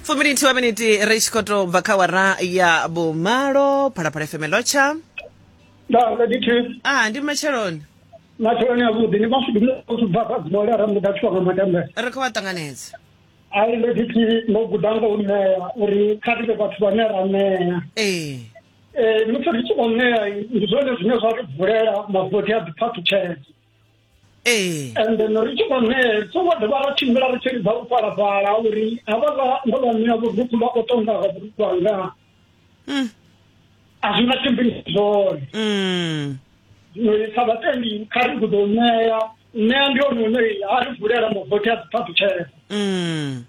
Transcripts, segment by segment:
fuminiti wa miniti ri tshi khou tou bva kha wara ya vhumalo phalaphala fm lotsha nda nda dithi a ndi matsheloni matsheloni avhuḓi ni mashudu muthu bva kha dzibole ra muda tshiwa nga matambe ri khou vha ṱanganedza ai nda dithi ndo guda nga u ṋea uri kha ri vhe vhathu vhane ra ṋea ee Eh, musi ri tshi khou ṋea ndi zwone zwine zwa ri vulela mavothi a ḓiphaṱutsheledzo ee and then ri tshi khou ṋee songo dovha ra tshimbila ri tshi lidza u falafala uri havhaḽa ndo vha ṋea vhurukhu vha khou tonga nga vhurukhu hanga mm. a zwi nga tshimbili zwone mm. zwino sa vhatendi kha ri gudo u ṋea ṋea ndi hone une a ri vulela mavothi a dziphaṱutshela mm.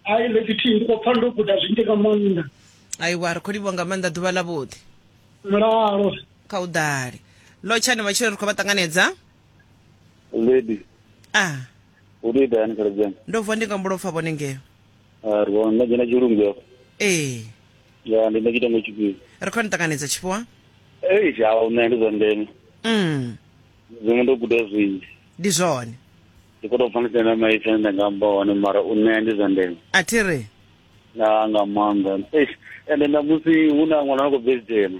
ai ḽekithi ndi khou pfa ndo guda zwinzhi nga maanḓa aiwa ri khou livhwa nga maanḓa ḓuvha ḽa vhuḓi mulalo kha u ḓale lotshani matshilo ri khou vha ṱanganedza lady a ah. u tou ita yani khaladzi ndo vuwa ndi nga mbulo pfa vhone ngeo ah, ri vhona nda dzhena tshilungu afho ee ya ndi nda tshitengo tshifhio ri khou ni ṱanganedza tshifhiwa ei zhawo nṋe ndi zwa ndeme mm. zwiṅwe ndo guda zwinzhi ndi zwone ndi khou tou pfa ndi sena maipfi ane nda nga amba hone mara u ṋea ndi zwa ndeme a thi ri na nga maanḓa ende na musi hu na ṅwana na khou bveli dzhena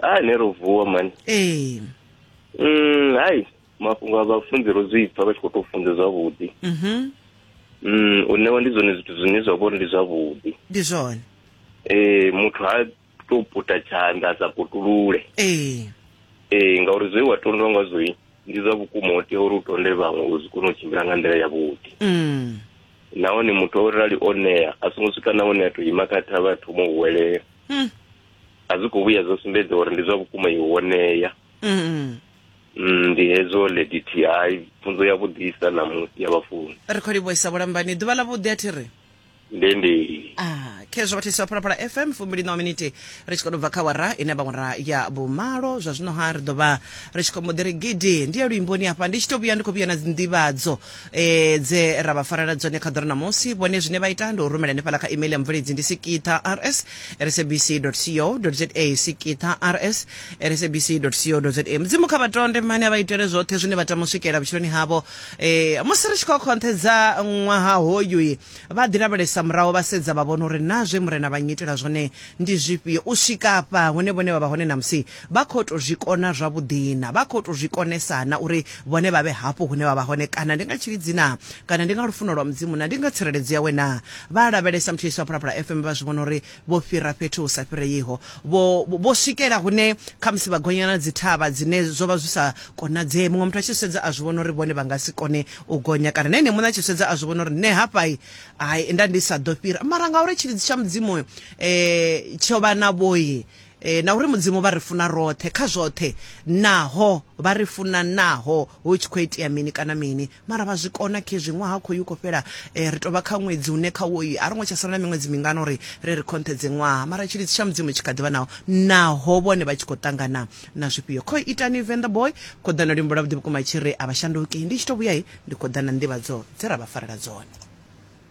ha ne ro vuwa mani ee mm hai mafhungo a vhafunzi ro zwi pfa vha tshi khou tou funza zwavhuḓi mhm mm u ṋewa ndi zwone zwithu zwine zwa vhori ndi zwavhuḓi ndi zwone ee muthu ha tou puta tshanḓa a sa putulule ee ee ngauri zwe wa tondwa ngazwoi ndi zwa vhukuma u tea uri u tonde vhaṅwe uri zwi kone u tshimbila nga nḓila yavhuḓi mm nahone muthu o rali o ṋea a songo swika na hune a tou ima kha thavha a thoma u huwelela mm a zwi khou vhuya zwo sumbedza uri ndi zwa vhukuma i wonea mm. mm, ndi hezwo lady ti hai pfunzo ya vhuḓisa namusi ya vhafuni ri khou livhuisa vhulambani ḓuvha ḽa vhuḓi a thi ri ndi ndi Ah, khezwo vhathisi vha phalaphala fm fumbili na miniti ri tshi khou bva kha wara ine vhawara ya vhumalo zwa zwino ha ri ḓo vha ri tshi khou mbo ḓi ri gidi ndi ya luimboni hafha ndi tshi tou vhuya ndi khou vhuya na dzinḓivhadzo e, dze ra vha farela dzone kha ḓoro ṋamusi vhone zwine vha ita ndi u rumela hanefhala kha email ya mubveledzi ndi sikitha rs sabc co za sikitha rs sabc co za mudzimu kha vhatonde mane a vha itele zwoṱhe zwine vha tama u swikelela vhutshiloni havho e, musi ri tshi khou khonthedza ṅwaha hoyu vha ḓi lavhelesa muraho vha sedza vha vhona uri na zwe murena vha nyitela zwone ndi zwifhio u swika afha hune vhone vha vha hone namusi Vha khou tou zwi kona zwavhuḓi-na? Vha khou tou zwi konesa-na uri vhone vha vhe hafhu hune vha vha hone, kana ndi nga tshilidzi-na, kana ndi nga lufuno lwa Mudzimu, na ndi nga tsireledzo yawe-na? Vha a lavhelesa muthu Yesu a phulaphula FM, vha zwi vhona uri vho fhira fhethu hu sa fhireiho. Vho, vho swikela hune khamusi vha gonya na dzithavha dzine zwo vha zwi sa konadzee. Muṅwe muthu a tshi zwi sedza a zwi vhona uri vhone vha nga si kone u gonya, kana na ene muṋe a tshi zwi sedza a zwi vhona uri nṋe hafha-i, hai, nda ndi sa ḓo fhira. Mara ngauri tshilidzi tsha Mudzimu tsho vha navho-i, e, na uri mudzimu vha ri funa roṱhe kha zwoṱhe naho vha ri funa naho hu tshi khou itea mini kana mini mara vha zwi kona khezwi ṅwaha khou yu khou fhela e, ri tovha kha ṅwedzi une kha woyi a ri ngo tsha sala na miṅwedzi mingana uri ri ri khonṱhedze ṅwaha mara tshilidzi tsha mudzimu tshi kha ḓivha naho naho vhone vha tshi khou ṱangana na zwifhio kho itani venḓa boy kho ḓa na luimbo lwa vhuḓi vhukuma tshi ri a vha shanduki ndi tshi to vhuya ndi khou ḓa na nḓivhadzo dze ra vha farela dzone